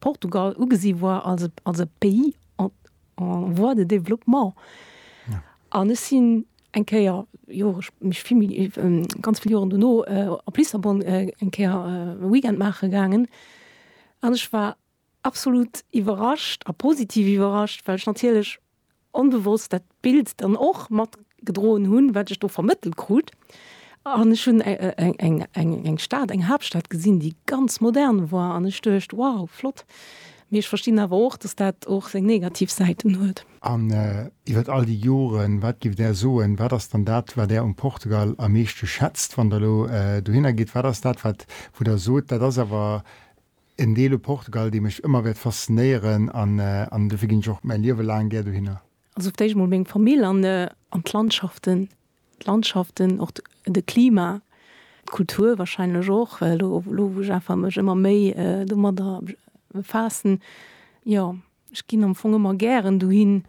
Portugal ugesi war als e, als e Pays en, en voie de développement. Ja. An ech sinn eng Kéier, Jore sp, mech vill méi, ähm, ganz vill Joren dono, äh, op Lissabon äh, eng Kéier äh, Weekend maache gaangen. An ech war absolut iwwerrascht a positiv iwwerrascht, well ech natierlech onbewosst dat Bild dann och mat gedroen hunn, wat ech do vermëttelt krut. An ech hunn eng Stad, eng Haaptstad gesinn, déi ganz modern war an ech duecht, wow, flott. Mee ech verstinn awer och, dass dat och seng negativ Säiten huet. An iwwer all déi Joren, wat géift Där soen, wat ass dann dat, wat Där um Portugal am meeschte schätzt, wann Der elo dohinner gitt? Wat ass dat, wat wou Der sot, dat ass awer En Deel u Portugal, dee mech ëmmer wäert faszinéieren an dofir ginn ech och mäi Liewe laang gär dohinner. Also fir d'éischt emol meng Famill an d'Landschaften, d'Landschaften, och de Klima, d'Kultur wahrscheinlech och, elo wou ech einfach mech ëmmer méi domadder befaassen, jo. Ech ginn am Fong ëmmer gären dohin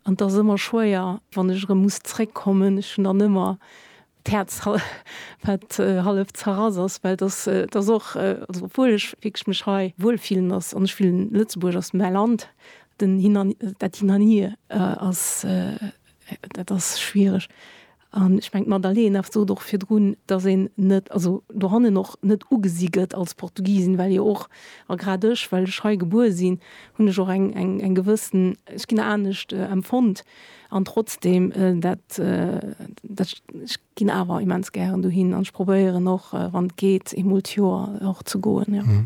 an et ass ëmmer schwéier, wann ech erëm muss zréckkommen. Ech hunn dann ëmmer d'Häerz, wat hallef zerrass ass, well et ass, et ass och, also obwuel ech wierklech mech hei wuel fillen ass an ech fillen, Lëtzebuerg ass mäi Land, den Hin an, dat Hin an Hier ass, dat ass schwiereg. An ech mengen, d'Madalena sot och virdrun, dass een net, also dohannen och net ugesi gëtt als Portugisin, well jo och, a grad ech, well ech hei gebuer sinn, hunn ech och eng gewëssen, ech ginn anescht empfonnt. An trotzdem, dat, ech ginn awer immens gären dohin an ech probéieren och, wann et geet, eemol d'Joer och ze goen, jo.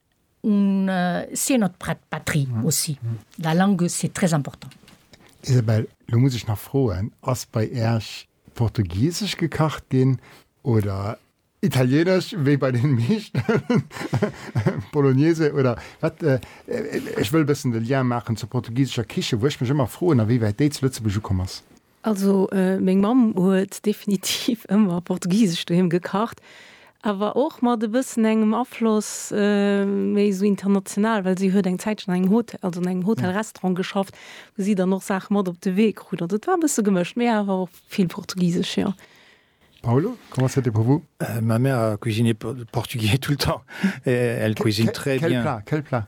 On sait notre patrie aussi, la langue c'est très important. Isabelle, lo muss ech nach froen, ass bei Äerch portugiesesch gekacht ginn oder italienesch wéi bei den meeschten Bolognese oder wat? Ech wëll e bëssen de Lien maachen zur portugiesescher Kichen, wou ech mech ëmmer froen, a wéi wäit déi zu Lëtzebuerg ukomm ass. Also meng Mamm huet definitiv ëmmer portugisesch doheem gekacht, awer och mat e bëssen engem Afloss méi esou international, well si huet eng Zäitchen an engem Hotel, also an engem Hotel-Restaurant geschafft, wou si dann och Saache mat op de Wee krut. Also et war e bësse gemëscht, mee awer och vill portugisesch, jo. Paulo, comment c'était pour vous? Ma mère a cuisiné portugais tout le temps, elle cuisine très bien. Quel plat? Quel plat?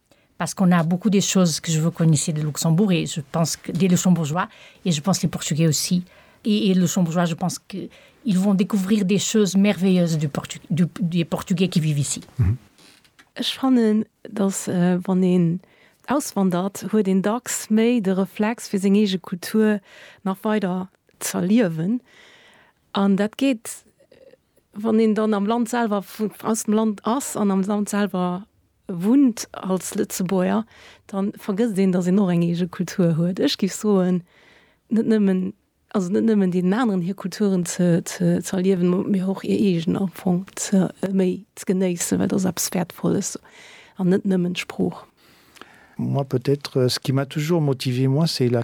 Parce qu'on a beaucoup des choses que je veux connaissiez de Luxembourg et je pense que des Luxembourgeois et je pense les Portugais aussi et et Luxembourgeois je pense que ils vont découvrir des choses merveilleuses du Portu du des Portugais qui vivent ici. Ech fannen, datt wann een auswandert, huet een dacks méi de Reflex fir seng eege Kultur nach weider z'erliewen an dat geet Wann een dann am Land selwer, aus dem Land ass an am Land selwer wunnt als Lëtzebuerger, da vergësst een, datt een och eng eege Kultur huet. Ech géif soen, net nëmmen, also net nëmmen deenen aneren hir Kulturen ze, ze, ze erliewen, mee och hir eegen am Fong ze, méi ze genéissen, well dat ass eppes Wäertvolles an net nëmmen d'Sprooch. Moi peut-être, ce qui m'a toujours motivé moi, c'est la.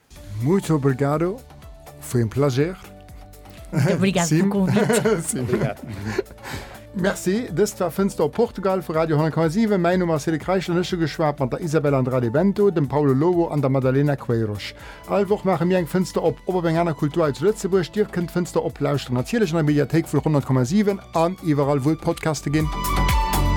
Muito obrigado foi um plager. Obrigado pelo convite. Merci, dëst war Fënster op Portugal vu Radio 10,7. Mäin Numm ass Cédric Reichel an ech hu geschwat mat der Isabel Andrade Bento, dem Paulo Lobo an der Madalena Queiroz. All Woch maache mir eng Fënster op, ob op eng aner Kultur hei zu Lëtzebuerg. Dir kënnt d'Fënster op lauschteren natierlech an der Mediathéik vu 100,7 an iwwerall wou et Podcaste ginn.